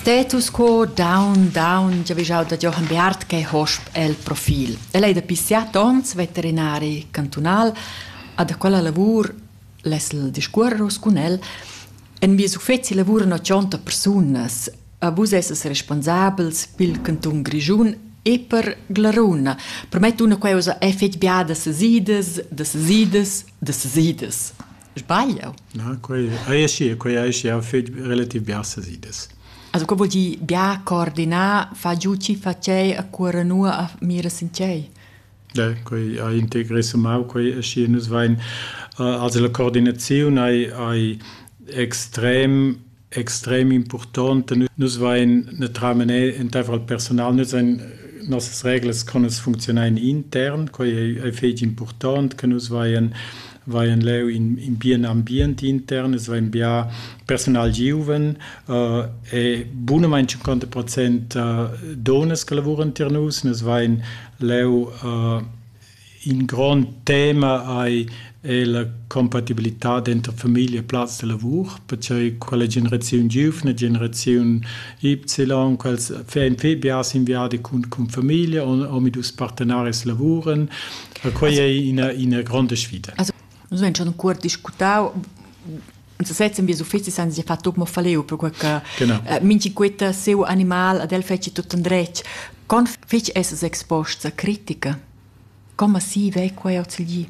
Status quo down down giavischau da Jochen Beat che hosp el profil. El ei dapi siat onns veterinari cantunal, a da quella lavur lesel discuorros cun el en vies uffeci lavuran 80 persunas. A vus esses responsabels pil cantun Grischun e per Glaruna. Prometto una queusa è fetg biada sesidas, da sesidas, da sesidas. Sbaglio? Na, quei ei aschi, quei ei aschi, ha fet relativ bia sas idas. Also, co vuol dir bia coordinar, fa giu chi fa tgei a cuora nua a mira sin tgei? Ja, quei ei integrissemau, quei aschi nus vein. Also la coordinaziun ei, ei extrem extrem impurtont e nus vain netramané entaifer il personal, nus hain nossas reglas con nus funcziunain intern, quai ei fetg impurtont che nus vain vain leu in, in bien ambient intern, es vain bia personal giuven uh, e bunamain 50 procent uh, donas che lavuran tier nus, nus vain leu uh, In grond tema ei ei la compatibilitad denter famiglia e plaz de lavur, percier quella generaziun giuvna, generaziun Y, quels ein fetg biars in viadi cun, cun famiglia, omadus partenaris lavuren. Quei ei ina, ina gronda sfida. Also, nus vegn schon cuort discutau en sesez in bies uffecis han sie fatto mo faleu per quei che eh, minchi quetta seu animal ad el feci tutto andretg con fec esses exposts a critica come si vei quei ozilgi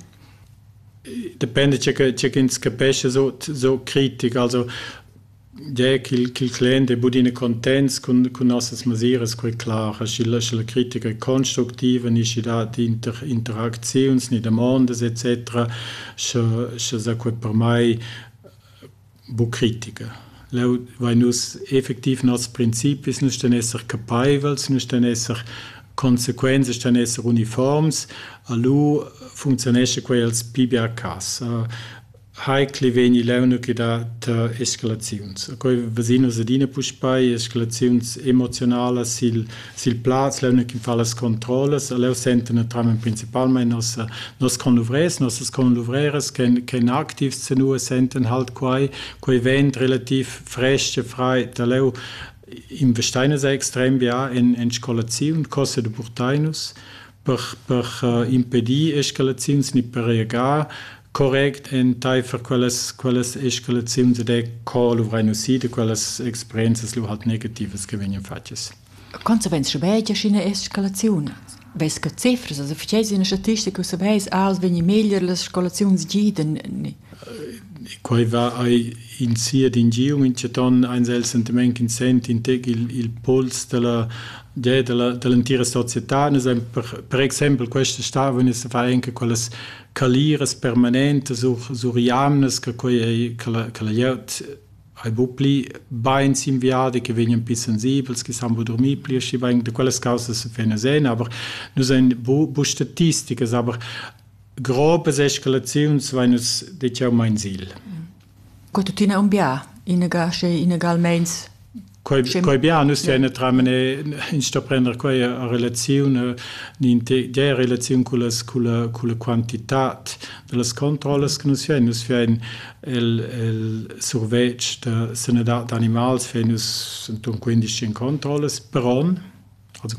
Depende c'è che c'è ins capesce so so critic also der qu'il qu'il clen de budine contents con con nossas masiras quei klar aschi la la critica è constructiva ni da die Inter Interaktions ni der Mondes etc sche sche zacuot per mai buc critica. Leu vein nus effectiv nos principis, nus ston esser capeivels, nus ston esser consequenze ston esser uniforms, a lu funzionesce quei els pi bia cas. Hai cliveni leuna che dat escalaziuns. Quei ves'in nus adina puspei, escalaziuns emozionalas sil sil plaz leu che fa las controllas leu senten naturalmein principalmein nos nos conluvrers nossas conluvreras che che aktiv senua senten halt quai quei vent relativ frestge frei da leu in vesteines è extrem ja in in scolaziun cosse de burtainus per per uh, impedir escalaziuns ni per regar Correct enteifer quellas quellas escalaziuns ed è co luvrein usi da quellas experienzas lu halt negativas che vegnan fatgas. Consequenz schabegia sch'ina escalaziun vess che cifras also verstehst du eine Statistik aus weiß aus wenn je meglier las Eskalations giden quai va ai in sia d'ingium in chaton eins el sentiment in sent in teg il, il puls della de, della dell'entira società per, per exempel questa stavone se fa anche quelle caliras permanentas sur jamnas che quei ei che la, che la glieud ei buc pli bein s'inviada, che vegnan pli sensibels, che san buc durmir pli aschi bein. Da quellas causas vegn a sein, aber nus ein bu, bu statisticas, aber grobes escalaziuns vein nus detg jau mein Ziel. Co tuttina unbià? Inaga sche inaga almeins Quei, quei bia, nus tein a tramener instraprender quei a relaziun dia relaziun culla culla culla quantitat dallas controllas che nus fein nus fein el el survetsch da sanadad d'animals fein nus enton quindici controllas per onn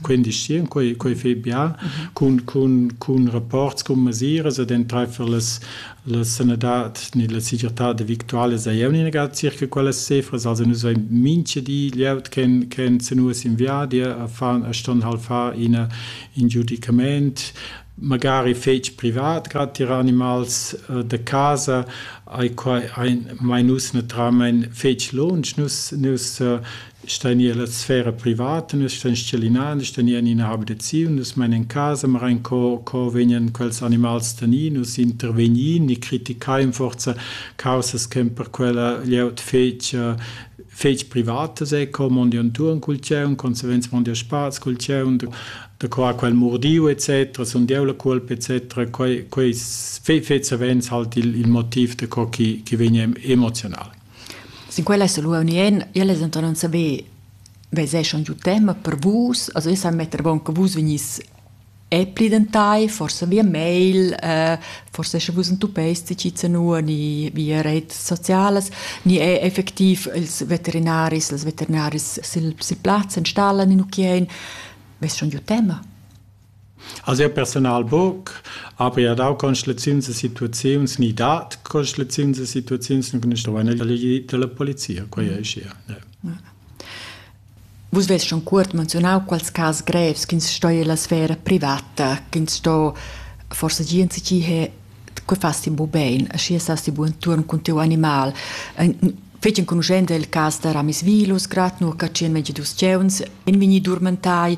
quindisch sì, quei, quei fai bia cun, cun, cun rapports cun mesiras ed enteifer las, la sanadad ni la segirtad victuala sei jeu negar circa quellas cifras. Also nus vein mincha di glieud che che senus in viadi a fan a ston hal far ina in giudicament magari fetg privat, grad tier animals äh, da casa, ai quai ein mai nus naturalmein fetg lunsch, nus nus äh, Stei nia la sfera privata, nus stein schelinain, nus tegnein ina habitaziun, nus mein en casa, marain co, co vegnan quels animals tenir, nus intervegnin e critichein forza caussas che per quella glieud fetg fetg privatas è co mondi entuorn cul tgieun, consequenz mondi a spazi cul tgieun, da qua quel mordiu etc. sun deu la cuolpa etc. Quei quei fetg savens halt il il motiv da co chi chi vegn emoziunal. Sin quel esa lura unien. Jeu less denton non saver veser schon giu tema per vus. Also io sai metter avon che vus vegnis e plidentai, forsa via mail, forsa sche vus entuppeis tgizanua ni via reits socialas, ni er effectiv ils veterinaris, las veterinaris sil sil plaz, installan in ucchiein. Vess schon giu tema. Als jeu persunal buc, aber jeu ha dau constelaziuns e situaziuns, ni dat constelaziuns e situaziuns, nus stuein elegir dalla polizia, quei ei schia. Vus vess schon cuort menzionau quals cas grevs ch'ins stoi ella sfera privata, ch'ins sto forsa gia ensi he che fas ti bu bein, schi sas ti bu enturn cun tiu animal. Fetg enconuschent è il cas da Ramis Vilus, grad nur ca 122 giuvens in vegni durmentai.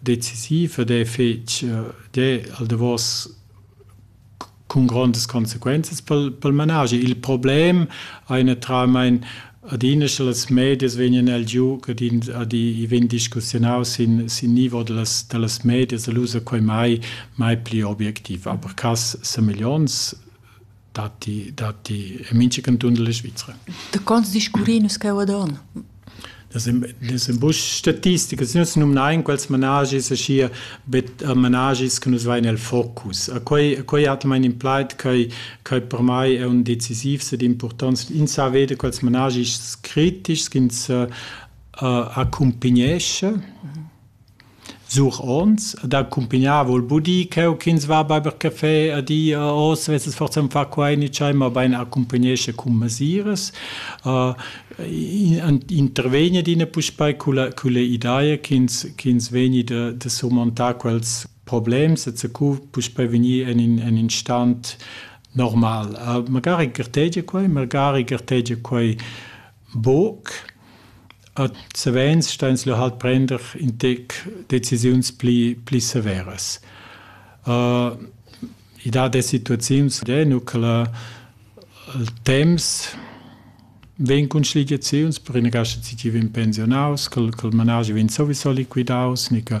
decisiv ed è fetg d'he al davos cun grondas consequenzas pel pel managi. Il problem ei natiralmein adina sche las medias vegnan el giu ed in ad i vegn discussiunaus sin sin nivo dallas dallas medias e lu sa quei mai mai pli objectiv. Aber cass sa miglions datti, datti in mincha canton della Svizzera. Da cons discurri nus cheu ad on? Das sind bush statistiche, sie nutzen numnein quels managis aschi bet managis che nus vai nel focus. A quei quei hat mein implied che che per mai è un decisiv sed importanz in sa vede quels managis kritisch ins uh, accompagnesce Sur ons ed accumpignar voul bu dir ch'eu ch'ins va baiver cafè a di a hoz vessas forsa ün far quai ni tschai, mabain accumpignescha cun masiras. Intervegner dina puspei culla culla ideia ch'ins ch'ins vegni da da surmontar quels problems e zacu puspei vegnir en in en in stan normal. Magari gartegia quai, magari gartegia quai Buc. Ad savens ston ins lu halt prender in tec decisiuns pli pli severas. I dat e situaziuns e nu che la il temps vegn cun schligiaziuns, per ina cascha tgi vegn pensionaus, ch'el ch'el manaschi vegn sowieso liquidaus, ni che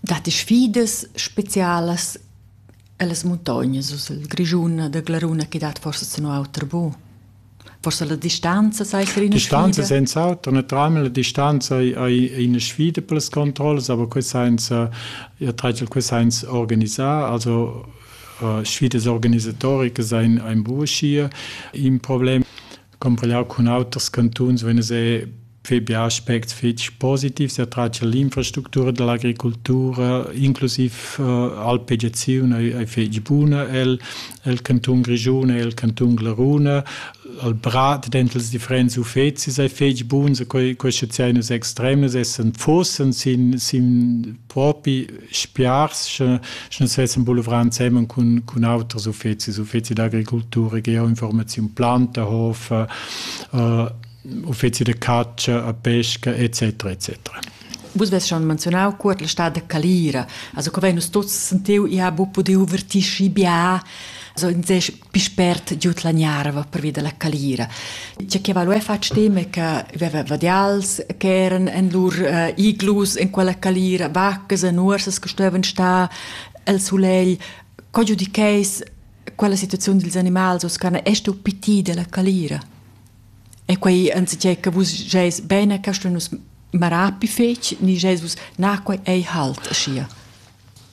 dat sfidas specialas ellas muntognas uss el Grischun da Glaruna che dat forsa zun auter bu? Forsa la distanza sai ser ina distanza senza auter naturalmente la distanza ei ina sfida per las controllas aber quest senza ihr titel quest senza organisar also uh, sfidas organisatoricas ein ein buschie im problem Comparar cun auters cantuns vegn a far bia aspects fetg positivs a tratg l'infrastructura dall'agricultura, inclusiv uh, alpegiaziun ei, ei fetg buna el, el cantun Grischun e el cantun Glaruna. Al brat dentels differents uffecis ei fetg buns, quei, queste zenus extremes essen fossen sin, sin propi spiars sche sche sessen boulevrà insemmen cun cun auters uffecis uffeci d'agricoltura che informaziun planta hof äh, uffeci de caccia a pesca etc etc Vus ves schon menzionau cuort la stad de Calira, also co veinus tuts sentiu, ia bu pudiu vertisci bia, also in sech Pispert giud la gnarva pervi dalla calira. Tge che va lu fatg dem è che veva vadials che eran en lur uh, iglus en quella calira, vaccas e nuorsas che stuevan star el sulegl. Co giudicheis quella situaziun dils animals os che estu piti della calira? E quei anziché che vus geis bene, che stu nus marapi fetg, ni geis vus na quei ei halt aschia?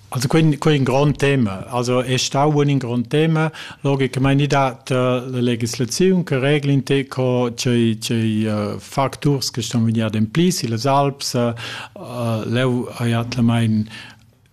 Also quei, quei è un grande Thema. Also è stato un grande Thema. Logicamente mi dat uh, la legislazione che reglin te co c'è c'è uh, factors che stanno venendo in pli in les Alps. Uh, leu ha jat la mein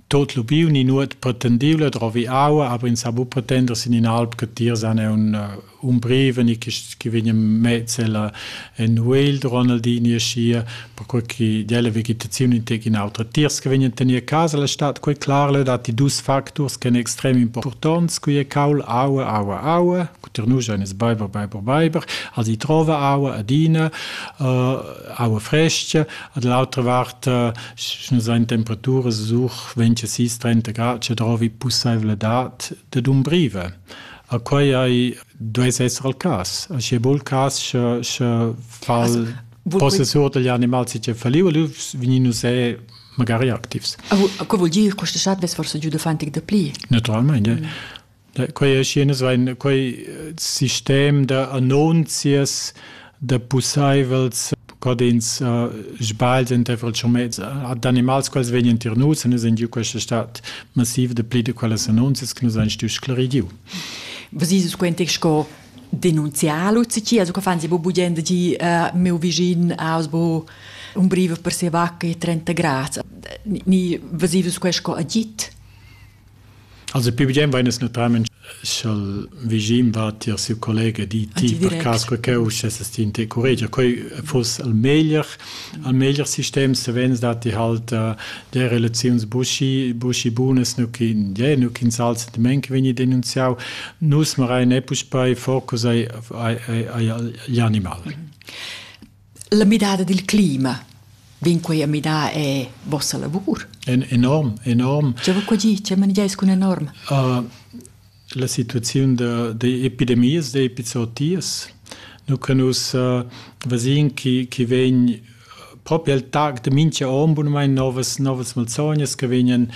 tot lubiu ni nuot pretendibile trovi aua, aber in sabu pretender sin in alp che tir san è un uh, umbriven e quists chi vegnan mezz ella in Whale Ronaldini e schia, perquai che della vegetazione integ in autra tiers che vegnan tener a casa la stat, quei clar dat die dus factors che extrem importants, qui è caul aua aua aua, cuter nu ein es beiber beiber beiber, als i trova aua adina, uh, aua fresca, ad l'altra vart uh, schna sein temperatura such 20 30 grad, ce trovi pusaivle dat de dumbrive. A quai ei, duess esser il cas. Sche bul cas, sche, sche fal possessur degli animals che faliu, lu veninu se magari activs. A co vuol dir questa chat ves forse giu dafantig da pli? Naturalmente. Mm. Da, quei è schienes, weil quei sistem da annunzias da pussaivels co ins uh, sbagl entaifer il schumez ad animals quals vegnan tier nus en in giu questa stat massiv de pli de quelles annunzias che nus ein stuiu sclaridiu. Was ist es quentic sco denunziar Lucici, also che fan si bu budend di uh, meu visin aus bu un brive per se vacca e 30 grads. Ni was ist es questo agit? Also più bien vain es natüralment scha'l vischin va tier siu collega di ti per cas quai ch'eu uschess ti in te curregia. Quai fuss il meglier, il meglier sistem savens da ti halt der relaziuns buschi buschi bunas nu chi ie nu chi'ns al sentimaint vegni denunziau. Nus marain e puspei focus ai ai ai animal. La midada dil clima vegn quei a midar è vossa lavur? En enorm, enorm. Tge va qua gi? Tge manegiais cun enorm? Uh, la situaziun d'epidemias, d'epizootias. Nous canus uh, vasin chi, chi vegn proprio al tag de mincha om bunmain novas, novas malsognas che vegnan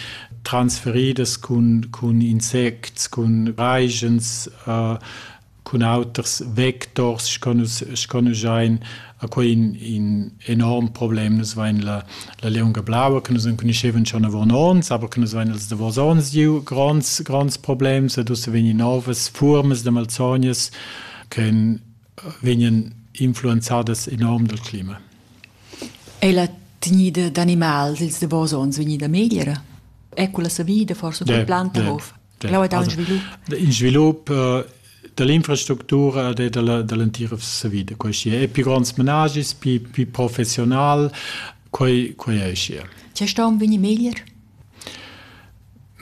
transferidas cun, cun insects, cun raigens, uh, cun auters vectors sco nus sco nus ein a quei in, in enorm problem nus vein la, la lieunga blaua che nus enconuschevan schon avon ons aber che nus vein els davos ons giu gronds gronds problems ed ussa vegni novas formas de malsognas che vegnan influenzadas enorm dal clima. È la tegnida d'animal dils davos ons vegnida megliera? È quella savida forse col yeah, planta yeah. of? in svilup da l'infrastructura e da l'entira savida. Questi è più grands menagis, più, più professional, quei, quei è și. Ce sta un veni meglier?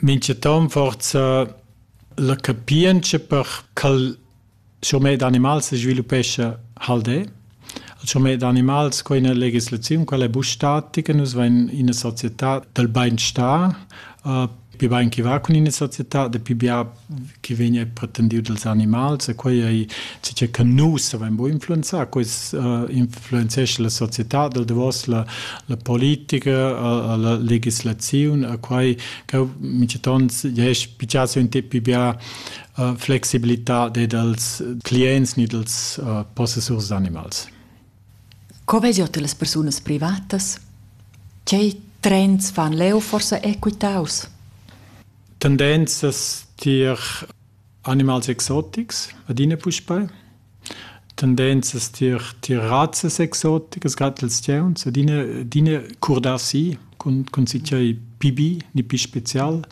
Mince tom forza la capience per cal Schurmet d'animals sviluppescha Haldè. Il schurmet d'animals co ina legislaziun, quella è buc statica. Nus vein ina società del beinstar, più bein che va cun ina società, de più bia che vegn è pretendiu dels animals e quei ei che che nus savein buc influenzar. Quei influenzescha la società del davos la la politica, la legislaziun e quei cheu mintgaton jess pigiasse un tip più bia flexibilità dei dals clients ni dals uh, possessurs d'animals. Co vegiot las persunas privatas? Tgei trends fan leu forsa equitaus? Tendenzas tier animals exotics adina puspei. Tendenzas tier tier razzas exoticas gatels tgauns adina adina curdar si cun cun tgei pibi ni pi special.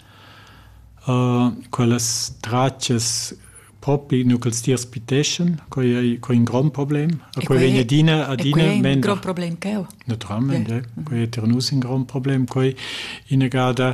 Quellas tratgas propi nu ch'els tiers piteschan, quai ei quai ein grond problem. E quei vegn adina adina mender. Grond problem cheu. Naturalment, ja. Quei ei tier nus in grond problem. Quei inagada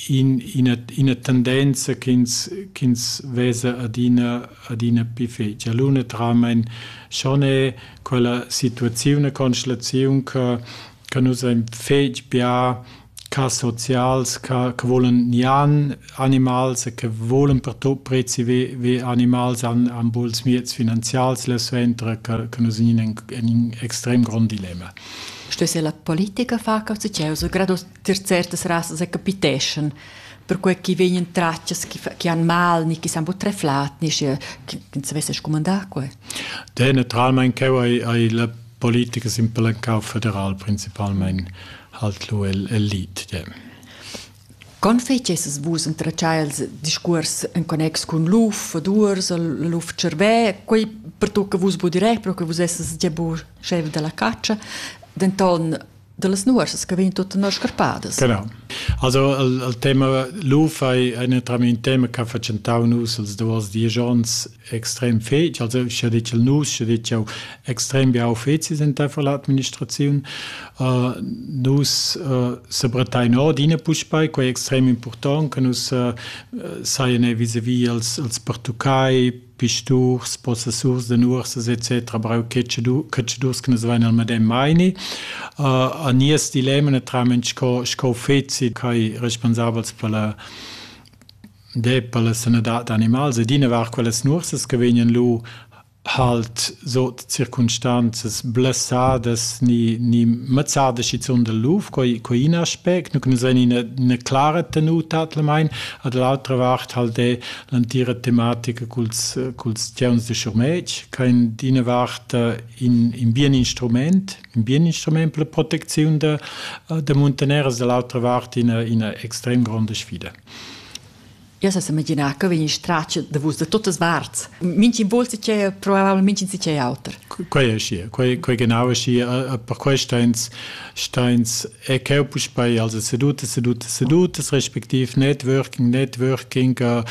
in, ina, ina tendenza ch'ins, ch'ins vesa adina, adina più fetg. L'una tramein schon è quella situazione, constelaziun che, che nus ein fetg bia ca socials, ca, che volen nian animals e che volen prezi ve, ve animals an, an buls miets finanzials le ventre, che, che nus in, in, in extrem grond dilemma. Što se la politika faka u se čeus grado tier certas rasas e capiteschan perquei chi vegnan tratgas chi, chi han mal ni chi san buc treflat ni sche chi savesse scumandar quei. Diametralmein cheu ei, ei la politica simpelcau federal principalmein halt lu el, el lit. Yeah. Con feceses vus entratschai els discuors en connex cun luf, vadurs, luf cervè, quei per tu che vus budi re, però che vus esses già bu chef della caccia, denton dallas nuorsas che vegn tuttina scarpadas. Genau. Also il, il tema luf ei enetramein un tema che ha facentau nus els duas dies ons extrem fetg, also sche ditg nus, sche ditg auch extrem bia uffecis in der Administration. Uh, nus uh, sebretain ordine puspei, quei extrem important, che nus uh, saien vis-a-vis als, als Portugai, pisturs, possessurs de nuorsas etc. brau cacciadurs che nus vein al medem meini. Uh, a nies dilemma naturalment sco, sco feci kai responsabels per la de per la sanadad d'animals ed ina var quelles nuorsas che vegnan lu halt so circumstanzas blessadas ni ni mazzada schizun del luf coi coi in aspect nu que nus in eine, eine klare tenuta at la mein ad l'altra vart halt de l'antira tematica culs, culs tgeuns de schurmetg, che in d'ina vart in, in bien instrument, in bien instrument per la protecziun de, de muntaneras, dall'altra vart ina, ina extrem gronda sfida. Io se immaginavo che veni straccio da vus da tutte parti. Minci volsi c'è, probabilmente si c'è altro. quei è schi quei quei genau schi per quei steins steins e cheu puspei also seduta seduta sedutas respektiv networking networking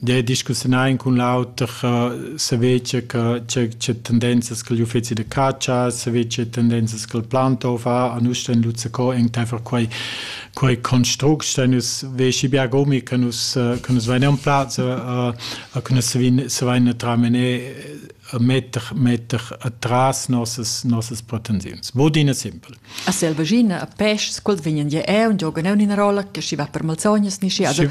de discussione con l'auter se vece che c'è tendenzas che gli uffizi de caccia se vece tendenzas che il planto fa a nus sten luzze co in tefer quei quei construct sten us veci biagomi che nus che nus veniam plazza a che nus se vin se vin tramene metter, metter atras nossas, nossas pretensiuns. Bodina simpel. A selvaschina, a peschs, quels vegnan gia eu, giogan eu in rolla, che si va per malsognas, ni si ada.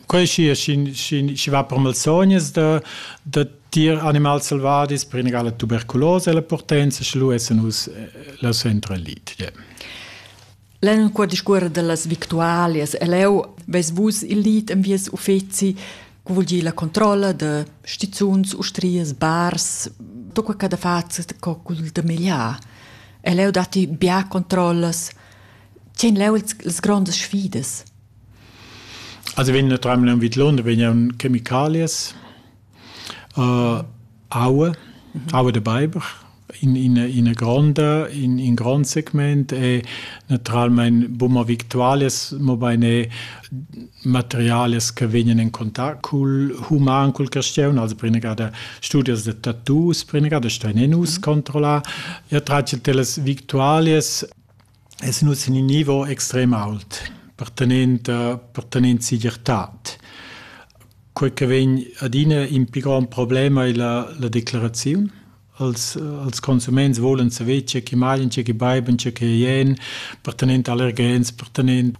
Quel si, si va per malsognas da, da tier animals selvadis per inegala tuberculosa e la potenza, sche lu essen us la centra lit. Yeah. En quella discuora dallas victualias e leu veis vus il lied en vies uffeci che vul dir la controlla da stizuns, ustrias, bars, tutto quello che fate co col de meglier. E leu dati bia controllas. Tien leu las grandes sfidas. Also wenn nur dreimal am Vidlon, wenn ja un Chemikalias. Aua, aua da beiber in ina ina gronda, in in grond segment e naturalmein buma victualias, mobein è materialias che vegnan en contact cul human, cul carstgaun, also prinegada studias da tattoos, prinegada stuein nus controllar. E tratg dellas victualias Essan nus in ün nivo extrem ault pertanent pertanent segirtad. Quei che vegn adina in pi grond problem ei la la declaraziun. Als als consuments volan saver tge che maglian, tge che beiban, tge che ien, pertanent allergens, pertanent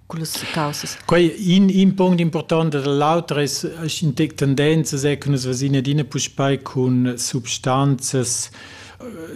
cullas caussas. Quei in, in punct important dall'auter es tendenzas è che nus vasin adina puspei cun substanzas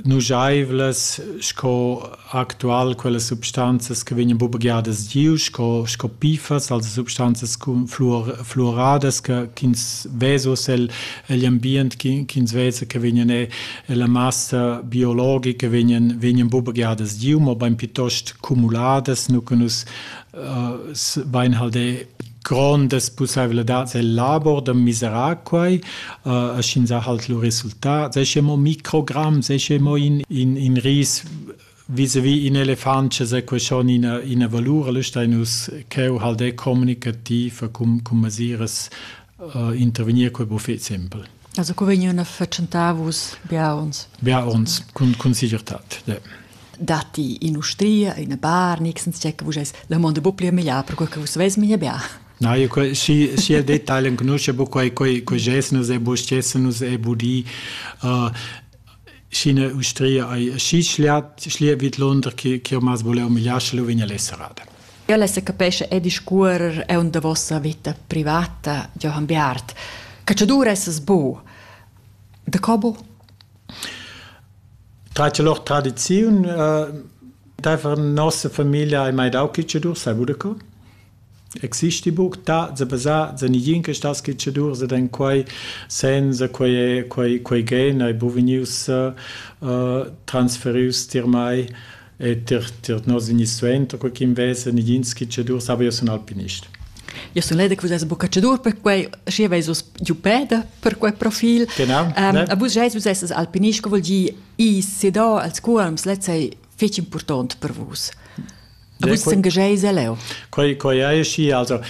nujaivlas sco actual quelle substanzas che vegnan bubagiadas giu sco sco pifas also substanzas flor, fluoradas che ch'ins vesa el egl ambient ch'ins vesa che vegnan e la massa biologica vegnan, vegnan buca gadas giu, ma bein piuttost cumuladas, nu che nus uh, bein halde grondas pussaiveladads el labor da miserar quai, uh, a schin sa halt lu resultat, se che mo microgramm, se che mo in, in, in ris Visavi in elefant che sa question ina, ina valur, allora stai nus cheu hal de communicativ cum, cum masiras uh, intervenir quei buffet simpel. Also co vegniun a feccentar vus bia uns? Bia uns, cun, cun sigurtad. De. Datti industria, ina bar, nixens check, vus eis la mondo bu pli meglier, per quei che vus veis meglier bia. No, io și, și el detaliu încunoaște bu quai, quai, quai gest nus e bu gest nus e bu di uh, Sch'ina ustria ei aschi schliat, schlia vidlunder che che ormas voleva migliar, sche lu vegn el serrada. Io lessa capesce e discuorer è un da vossa vita privata, Johann Beart. Cacciadur essas bu. De cobo? Trace lor tradiziun, uh, daifer nossa familia hai mai dau cacciadur, sai budeco? Exista buc tat sa basar zenigin che sta skitschadur ed en quei senza quei è quei quei gen ei bu vegnius uh, transferius tier mei e tier tier nos igni suenter co ch'in vesa negin skitschadur sava io sun alpinist. Io sun leda che vus eis buca cadur per quei, schi veis vus giu peda per quei profil. Genau. Um, ne? A vus eis vus esses alpinist, che vogl dir i sedar als cuolms, letz ei fetg impurtont per vus. Vus engageis leu. Quei, quei ei schi, also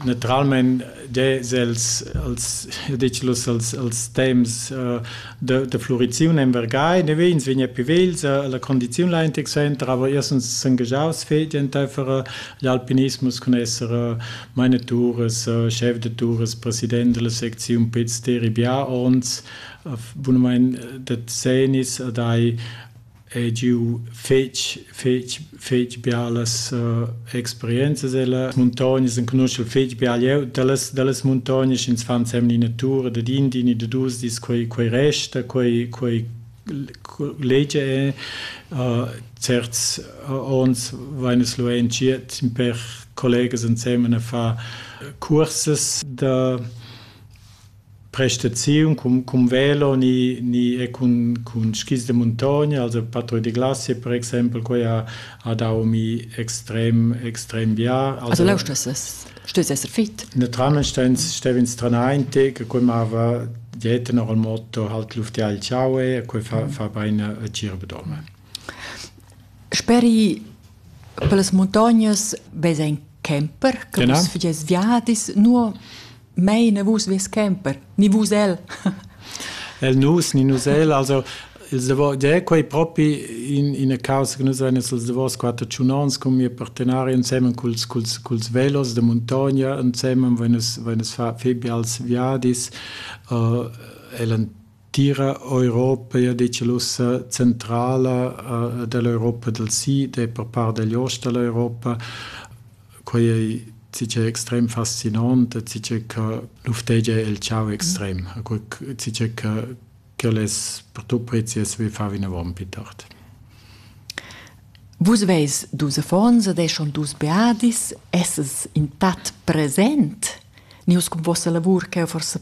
naturalment des els als dicius als als temps uh, de, de fluriziun en Vergai ne vegns vegn più vels uh, la condiziun la entec center aber erstens s'engagiaus fetg entfere gli alpinismus con esser uh, mainetures uh, chef de tours president della secziun Piz Teribià ons uh, bunamein de zenis uh, dai Ei giu fetg, fetg, fetg bialas experienzas ella muntognas, enconuschel fetg bia liug dallas, dallas muntognas, ins fa ensemen ina tur dad in di ni da dus dis, quei, quei resta, quei, quei legia ei. certs onns vein nus lu entschiet in per collegas ensemen a far cursas da Prestaziun cun cun velo ni ni e cun cun skis da muntogna, also patruille de glace per exempel, quei ha ha dau mi extrem extrem bien. Also leu stuessas stuessas esser fit. Naturalmein stev'ins tranaint e che quei mava dieta ora il motto halt lufti al ciao e quei fa fa bein a gira bedorma. Speri per las muntognas vesa in camper che vus fagies viadis, nur Mei ne vus ves camper, ni vus el. el nus ni nus el, also ils davos, de quei propi in ina causa che nus ein els davos quater tschunons con mia partenari insemen culs culs culs velos de montagna insemen wenn es wenn es fa febbi als viadis uh, el Tira Europa ei dical ussa centrala dall'Europa dal sid e per part dagl ost dall'Europa. Quei ei zichè extrem fascinant e zichè che luftegia el tgau extrem. Zichè che quel es per tut prezius vi far vinavon pli tard. Vus veis dus affons ed eschon dus beadis. Esses in tat present? Nius cun vossa lavur cheu forsa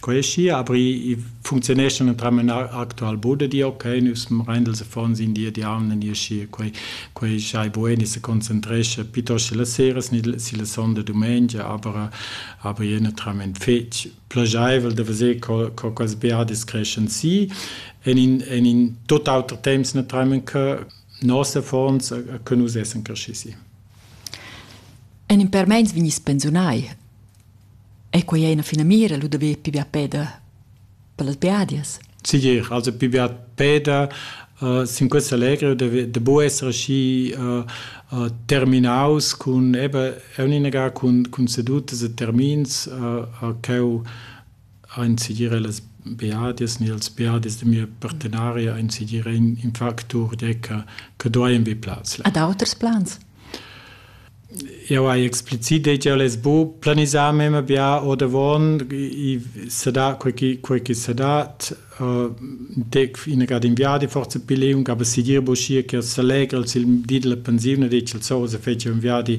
Quei è schi, aber ich funktionescha entram ün actual bod e di okay, nus rendels affons in di e di aun e schi, quei quei schai buen e se concentrescha piuttosto la sera si la sonda dumengia, aber aber je entram ün fetg plagiaivel da veser co co quels beadis creschan si en in en in tot auter temps entram che nos affons che nus essen cresci si. En in per meins vegnis pensiunai. Ei quei ei ina finamira lu da ver pli bia peda per las biadias? Segir, also pli bia peda uh, sin quest allegro da, da bu esser aschi uh, uh, terminaus cun eben, eu ninaga cun, cun sedutas e termins uh, uh, cheu Ein segir las beadias ni ils beadis da mia partenaria ein segir in factur tgei che che dueien vegnir plaz là. Ad auters plans? Jau hai explicit detg el es bu planisà memia bia ordavon, i, i sa dà quei chi, quei chi sa dat. dec ina gada in viadi forza pi liung aber si dir boschia che se legra il di della pensione de il so se fece un viadi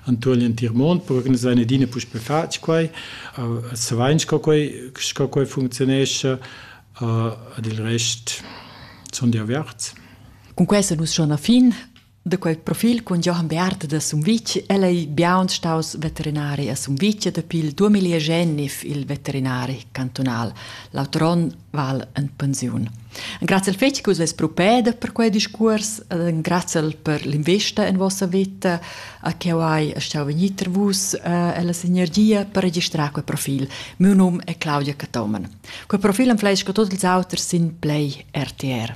antual in Tirmont per organizzare dine pus per fac quai se vain sco quai sco quai funzionesce ad il rest son di averts Con questo nus schon a fin Da quel profil cun Jochen Bearth da Sumvitg el ei biaun staus veterinari a Sumvitg dapi il 2009 il veterinari cantunal. L'auter onn val en pensiun. Grazie al fetg che vus propeda per quei discurs, grazie per l'investa en vostra vita, a che hai stau venir tra vus e eh, la sinergia per registrare quel profil. Mio nome è Claudia Catomen. Quel profil am fleisca tots ils auters sin Play RTR.